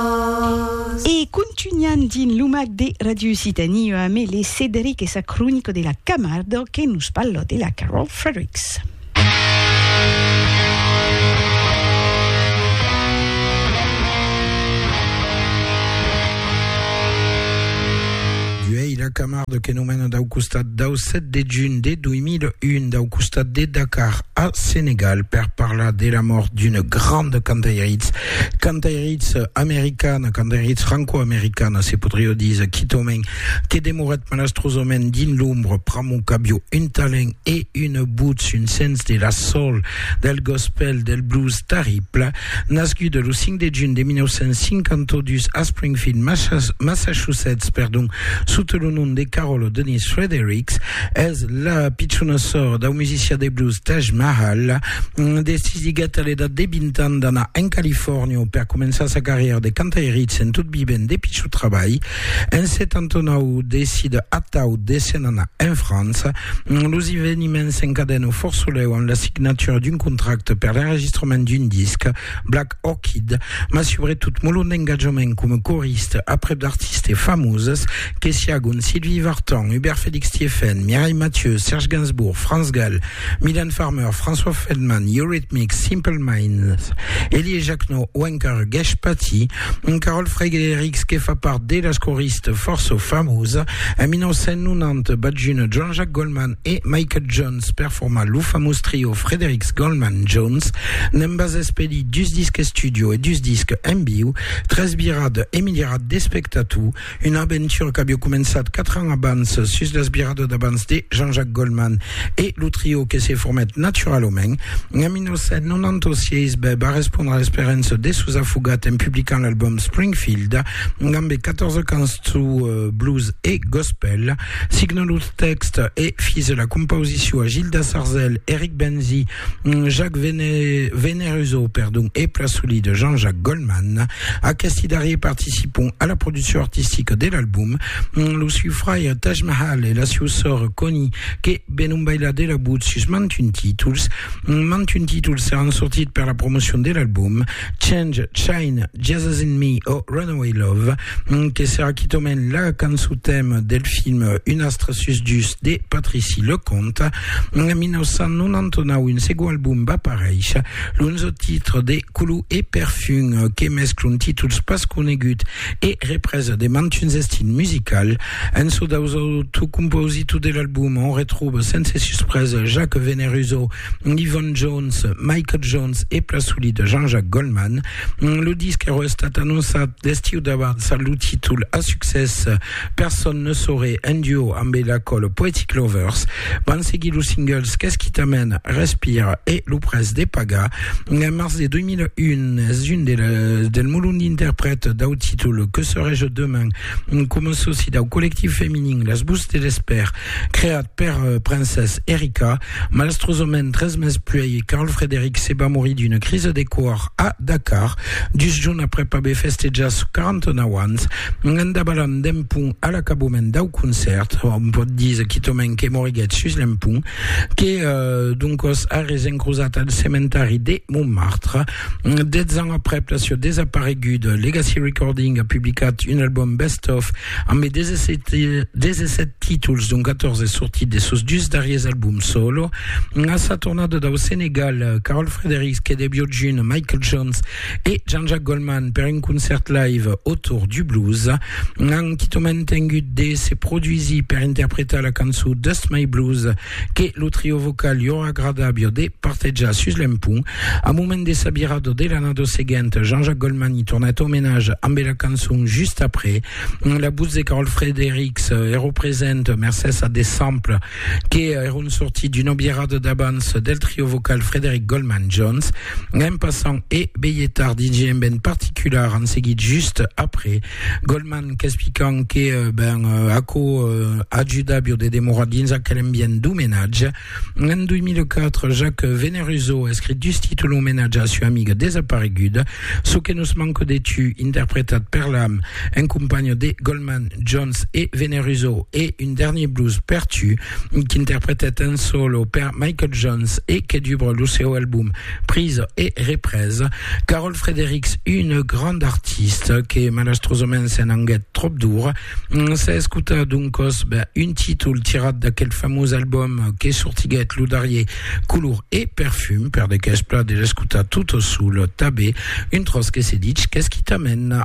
As. E contunhan dins lo mac de Radio Occitanie UAM le Cederic e sa cronica de la Camardo que nos parla de la Carol Fredericks. la Camarde que nomena dau costat dau 7 de juny de 2001 dau costat de Dakar a Senegal per parlar de la mort d'una grande cantairitz Cantairitz americana, cantairitz franco-americana, se podrió díser quitament, que demorèt malastrosament dins l'ombra pr'amor qu'avió un talent e una votz, un sens de la soul, del gospel, del blues tarrible. Nascuda lo 5 de junh de 1952 a Springfield, Massachusetts, perdon, sota lo nom de Carol O'Donnell Fredericks, es la pichona sòrra dau musician de blues Taj Mahal. Decisiguèt a l'edat de 20 ans d'anar en Califòrnia per començar sa carrièra de cantairitz en tot vivent de pichut trabalh. En 79 decide atau de se'n anar en França. Los eveniments s'encadèn au Fòrt Solèu amb la signatura d'un contracte per l'enregistrament d'un disc, Black Orchid, mas subretot molon d'engatjament coma coriste aprèp d'artistes famoses que siágon Sylvie Vartan, Hubert Félix Thiéfaine, Mireille Mathieu, Serge Gainsbourg, Franz Gall, Mylène Farmer, François Feldman, Eurythmics, Simple Minds, Elie Jacquenot o encara Gèsh Patti, un Carol Frédérics que fa part de las coristes fòrça famosa. En 1990 b'at junt Jean-Jacques Goldman e Michael Jones per formar lo famós trio Frédérics Goldman Jones. N'en bas espelí dus disques studio e dus disques en viu, tres virades e miliarats d'espectators. Una aventura qu'aviá començat quatre ans abans sus las viradas d'abans de Jean-Jacques Goldman e lo trio que se formèt naturalament en 1996 bèb a respondre a l'esperança de sos afogats en publicant l'album Springfield damb 14 cançons blues e gospel. Signant los tèxtes e fis la compausicion a Gilda Sarzel, Eric Benzi, Mm, Jacques Vene, Veneruso, perdon, e pla soli de Jean-Jacques Goldman. Aquesti darrier participon a la produccion artistica de l'album. Mm, Lo siu fraire Taj Mahal e la siu sòr Connie, que venon bailar de la but sus mantun títols. Mm, Mantun títols seràn sortit per la promocion de l'album. Change, Shine, Jesus in Me o Runaway Love. que serà quitament la cançon tèma del film Un astre sus dus de Patrici Leconte. En 1999, un segon album va pareish, l'onzo titre de Color e Perfum, que mescla un títols pas conegut e represa de mantuns estils musicals. En çò daus autres compositors de l'album, on retròba sense suspresa Jacques Veneruso, Yvonne Jones, Michael Jones e pla soli de Jean-Jacques Goldman. Lo disc era estat anonçat l'estiu davant sa lo títol a succès Personne ne saurait en duo amb la col Poetic Lovers. Van seguir los singles Qu'est-ce qui t'amène, Respire e Lo pres de pagar. En mars de 2001 es un de la, del molon d'interprètes dau títol Que serai-je demain com a soci dau collectiu feminin Les Bouts de l'Espère creat per Princesse Erika. Malastrosament, tres mes puèi, Carl Frederick se va morir d'una crisa de còr a Dakar, dus jorns aprèp aver festejat sos 49 ans, en davalant d'un pont a l'acabament dau concèrt. Òm pòt dire quitament que moriguèt sus l'empont, que d'on còs arrés encrosat al cementari de Montmartre. Dètz ans aprèp la sieu desapareguda, Legacy Recording a publicat un album best-of Amb de 17, 17 títols, dont 14 sortits de sos dus darriers albums solo, a sa tornada dau Senegal, Carol Fredericks que de Biojun, Michael Jones e Jean-Jacques Goldman per un concèrt live autour du blues, an quitament tengut de se produsir per interpretar la cançó Dust My Blues que lo trio vocal li aurà agradabio de partejar sus l'empont. Au moment de sa virada de l'annada seguenta, Jean-Jacques Goldman i tornèt au menage ambe la cançon Just après. La votz de Carol Fredericks èro present mercés a de samples que èron sortits d'una virada d'abans del trio vocal Frederick Goldman Jones. Anem passant e veietar DJ Emben particular en seguit Just après. Goldman qu'explicant que ben, aquò ajuda bio de demorar dins aquel ambient d'omenatge. En 2004, Jacques Veneruso escrit dus títol omenatge a sua amiga desapareguda, Çò que nos manque de tu, interpretat per l'am en companha de Goldman, Jones e Veneruso, e un dernier blues per tu, qu'interpretèt en solo per Michael Jones e que dubra lo seu album Prisa e represa. Carol Fredericks, una granda artista que malastrosament se'n anguèt tròp d'ora, s'a escotat d'un còsp un títol tirat d'aquel famós album que sortiguèt lo darrier Color e Perfum, per de qu'es plat de l'escotar tota sola, tabé un tròç que se ditz qu'es quitament.